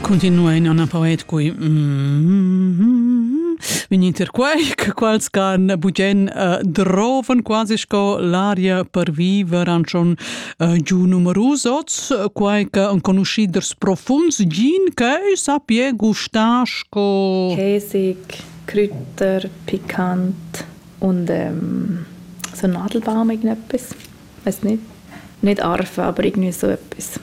Continuein Anna Poet cui vin inter quai che quals can bugen uh, drovan quasi sco l'aria per viver an schon uh, giu numerus oz quai che enconuschì ders profunds gin che sappie gustar sco Käsig, Kräuter, pikant und ähm, so Nadelbaum irgendetwas. Weiß nicht. Nicht arfen, aber irgendwie so etwas.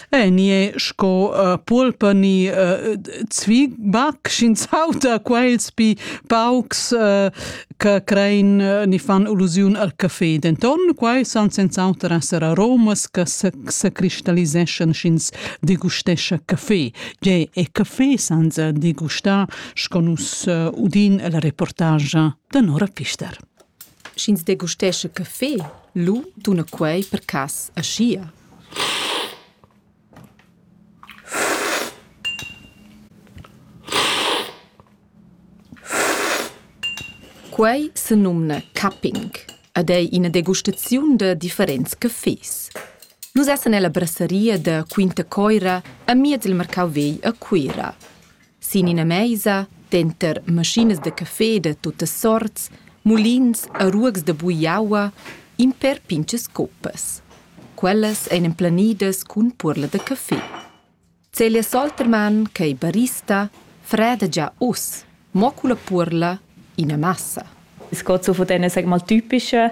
E ni è sco uh, pulpa ni uh, zwigbac sc'in sauta quels pi paucs uh, che crein uh, ni fan allusiun al caffè. Denton quai san senz'auter esser aromas che se, se cristalliseschan sc'ins degustescha caffè. Ge e caffè senza degustar sco nus uh, udin la reportage da Nora Pfister. sch'ins degustescha caffé, lu duna quei per cass aschia. Quei senumna cupping ed ei ina degustaziun da differents caffés. Nus essan ella brasseria da Quinta Coira amiez il marcau vegl a Cuira. Sin ina meisa, denter maschinas da café da tuttas sorts, mulins e ruogs da bugliaua, in per pintgas coppas. Quellas ein emplanidas cun puorla da café. Celia Soltermann, ch'ei barista, freda gia uss, mo culla puorla ina massa. Es geht so von diesen, sag mal, typischen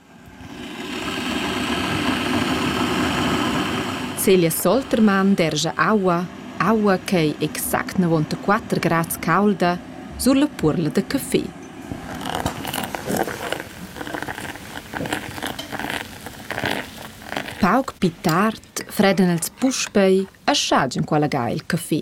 Celia Soltermann dergia aua, aua ch'ei exact navonta quater grads caulda sulla puorla da caffé. Pauc pli tard fredan els puspei a schagin quella ga il caffé.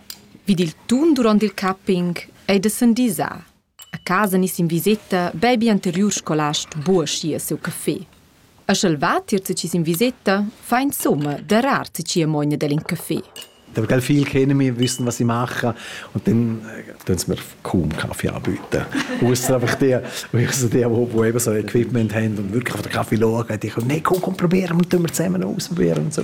Vid il tun duront il capping ei da sendisar. A casa nis in viseta bebi anteriur scolast buoschia siu café. E sch'el va tier ti sin viseta, fa insomma darar ti cia mogna dallin café. Aber gell, viel kennen wir, wissen, was ich mache. Und dann tun sie mir kaum Kaffee anbieten. Ausser einfach dir, ausser dir, wo, wo eben so Equipment haben und wirklich auf den Kaffee schauen. Die können, nein, komm, komm, probieren, und tun wir zusammen ausprobieren und so.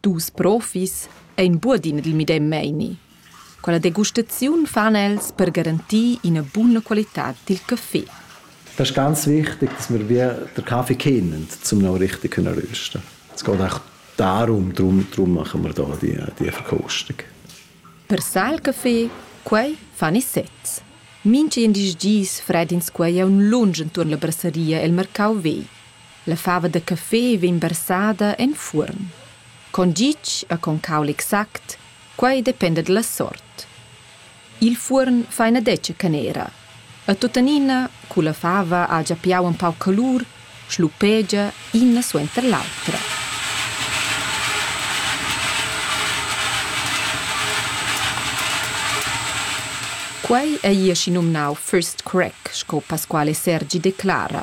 Dus profis ein buadin dil medem meini. Quella degustaziun fan els per garantir ina buna qualitad dil caffé. Das ist ganz wichtig, dass wir wie den Kaffee kennen, um ihn richtig zu rösten. Es geht auch darum, darum, darum machen wir hier die, die Verkostung. Per sal caffé, quei fan i sezs. Minchi in dis dis fredins quei è un lunge intorno alla brasseria el mercau vei. La fava da café vegn versada en fuorn. Con gitg e con caul exact, quei dependa dalla sort. Il fuorn fa ina detga canera e tuttenina, cu la fava ha gia piau empau calur, schlupegia ina suenter l'autra. Quei ei aschi numnau first crack, sco Pasquale Sergi declara,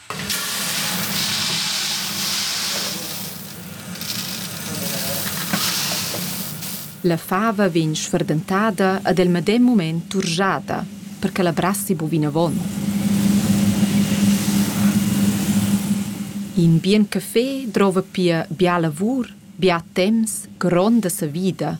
La fava vegn sferdentada ed el medem mument turschada, per che la brassi bu vinavon. In bien café drova pia bia lavur, bia temps, gronda savida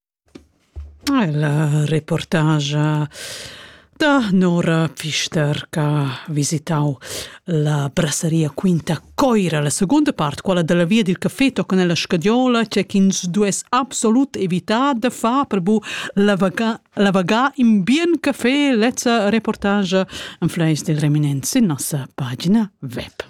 La reportagia da Nora Pfister ch'ha visitau la brasseria Quinta Coira, la secunda part, quella dalla via dil caffè tochen ella scadiola, tgei ch'ins duess absolut evitar da far per bu lavagar lavagar in bien caffè. Lezza reportagia enfleis dil reminent sin nossa pagina web.